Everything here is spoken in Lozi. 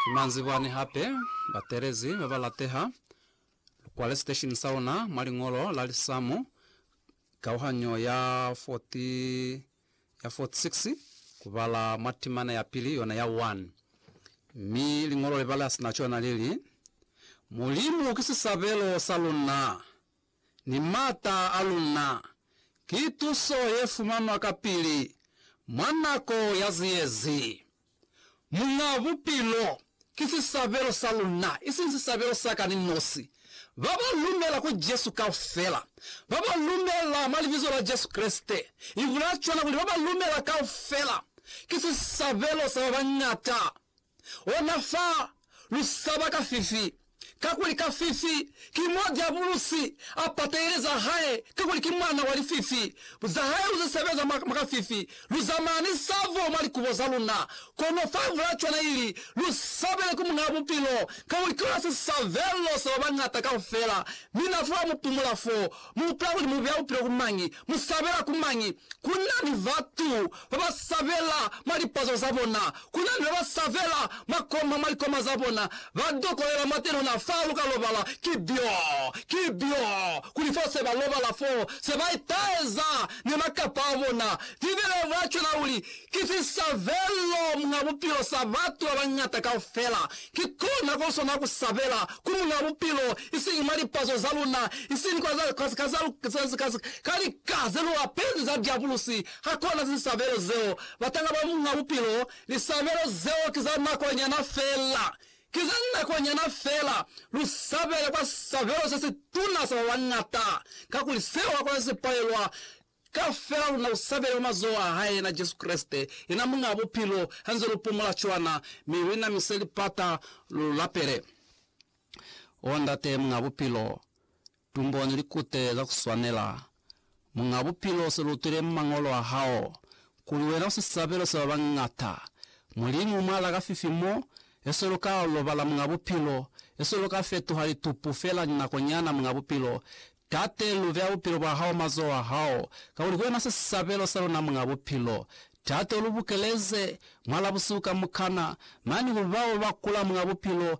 Ki manzibwani hape, batelezi ba ba lateha, lu kwale siteshini sa luna mwa liñolo la lisamu kauhanyo ya 46 ku bala mwa timana ya pili yona ya 1. Mi liñolo le bala sina cona li li, Mulimu ki sisabelo sa luna. ni m'ata a luna, ki tuso ye fumanwa kapili mwa nako ya ziyezi. Muñ'a Bupilo ki sisabelo sa luna, isiñi sisabelo sa ka ni nosi. Ba ba lumela ku Jesu kaufela, ba ba lumela mwa Libizo la Jesu Kreste, i bulaya cwana kuli ba ba lumela kaufela, ki sisabelo sa ba bañata. ona fa lu saba kafifi, kakuli kafifi ki mo Diabulusi a patahile za hae, kakuli ki mwana wa lififi. Za hae lu ze sebeza mwa, mwa kafifi, lu za mani savo mwa likubo za luna. Kono fa vula cwana ili, lu sabele ku Muñaa Bupilo, kakuli ki ona sisavelo sa ba bañata kaufela, mi na fula mu pumula fo, Mu utwa kuli mu beya bupilo ku mañi? Mu sabela ku mañi? Ku na ni batu ba ba sabela mwa lipazo za bona. Ku na ni ba ba sabela makoma mwa likoma za bona. Ba dokolela mwateni ona faa lu ka lobala. Ki byo. Ki byo. Kuli fo se ba lobala fo, se ba itaeza ni makapa a bona. Bibele i bula cwana kuli, Ki sisabelo mwa bupilo sa batu ba bañata kaufela. Kikona ko sona ku sabela ku Muñ'a Bupilo, isiñi mwa lipazo za luna, isiñi ka lika ze lu apezi za diabulusi. Hakuna zisabelo zeo batanga ba Muñ'a Bupilo. Lisabelo zeo ki za nako nyana fela. Ki za nako nyana fela. Lu sabele kwa sisabelo se si tuna sa ba bañata, kakuli seo hakuna se si palelwa Kaufela luna lu sabele mwa mazoho a hae, yena Jesu Kreste, yena Muñaa Bupilo, ha nze lu pumula cwana, mi lu inamise lipata, lu lapele, O Ndate Muñaa Bupilo, tumboni likute za ku swanela. Muñaa Bupilo, se lu utwile mwa Mañolo a hao, kuli wena u sisabelo sa ba bañata. Mulimu, mwa laka fifi mo, eswe lu ka lobala Muñaa Bupilo, eswe lu ka fetuha litupu fela linakonyana, Muñaa Bupilo, Tate, lu beya bupilo bwa hao mazoho a hao, kakuli ki wena sisabelo sa luna Muñ'a Bupilo. Tate, u lu bukeleze, mwa labusihu kamukana, mane ku bao ba kula Muñ'a Bupilo,